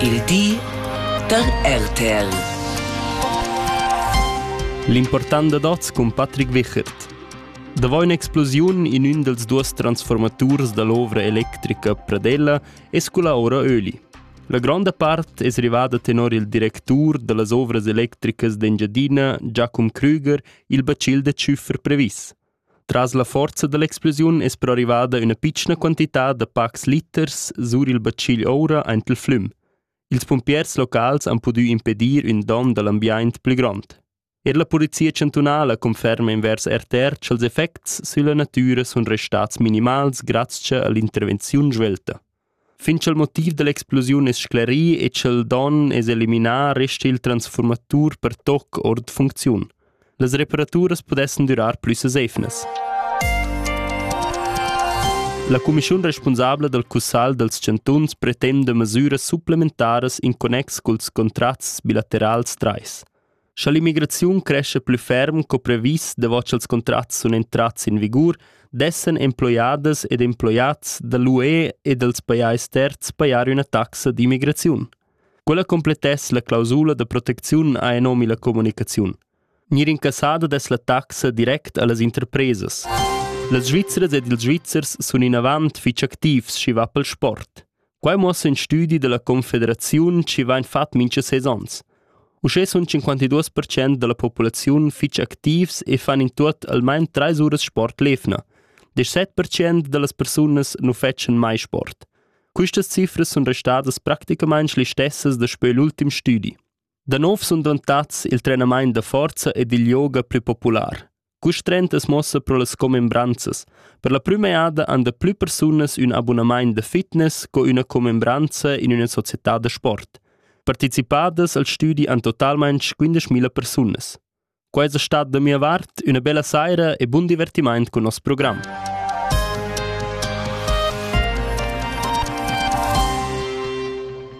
Il di da RTL. L'important da oz cun Patrick Wichert. Davò un'explosiun in ün dels duos transformaturs da l'ovra electrica Pradella es culla ora Öli. La gronda part es rivada tenor il directur da las ovras electricas d'Engiadina, Giacum Krüger, il bacil da tschüffer previs. Tras la forza dall'explosiun es però rivada üna pitschna quantità da pacs liters sur il batschigl oura aint il flüm. Ils pumpiers locals han pudü impedir ün don da l'ambiaint plü grond. Er la Polizia chantunala conferma invers RTR cha'ls effects sülla natüra sun restats minimals grazcha a l'intervenziun svelta. Fin cha'l motiv da l'explosiun es sclerì e cha'l don es eliminà resta il transfurmatur per toc our da funcziun. Las reparaturas pudessan durar plü sesefnas. La cumischiun respunsabla dal Cussagl dals chantuns pretenda mesüras supplementaras in connex culs contrats bilaterals trais. Scha l'immigraziun crescha plü ferm co previs davot cha'ls contrats sun entrats in vigur, dessan emploiadas ed emploiats da l'UE e dals pajais terzs pajar üna taxa d'immigraziun. Quella complettess la clausula da protecziun ha nomi la comunicaziun. Gnir incassada dess la taxa direct a las interpresas. Las Svizzras ed ils Svizzers sun inavant fich activs, schi va pel sport. Quai muossa in studi dalla Confederaziun chi vain fat mincha seis ons. Uschè sun 52% da la populaziun fich activs e fan in tuot almain trais uras sport l'efna. 17% da las persunas nu fetschan mai sport. Quistas cifras sun restadas practicamaing le stessas daspö l'ultim stüdi. Da nov sun dvantats il trenamaint da forza ed il yoga plü popular. Custrentas mossa pro las commembranzas. Per la prüma jada han da plü persunas ün abunamaint da fitness co üna commembranza in üna società da sport. Partecipadas al stüdi han totalmaing 15.000 persunas. Quai es stat da mia vart üna bella saira e bun divertimaint cun nos program.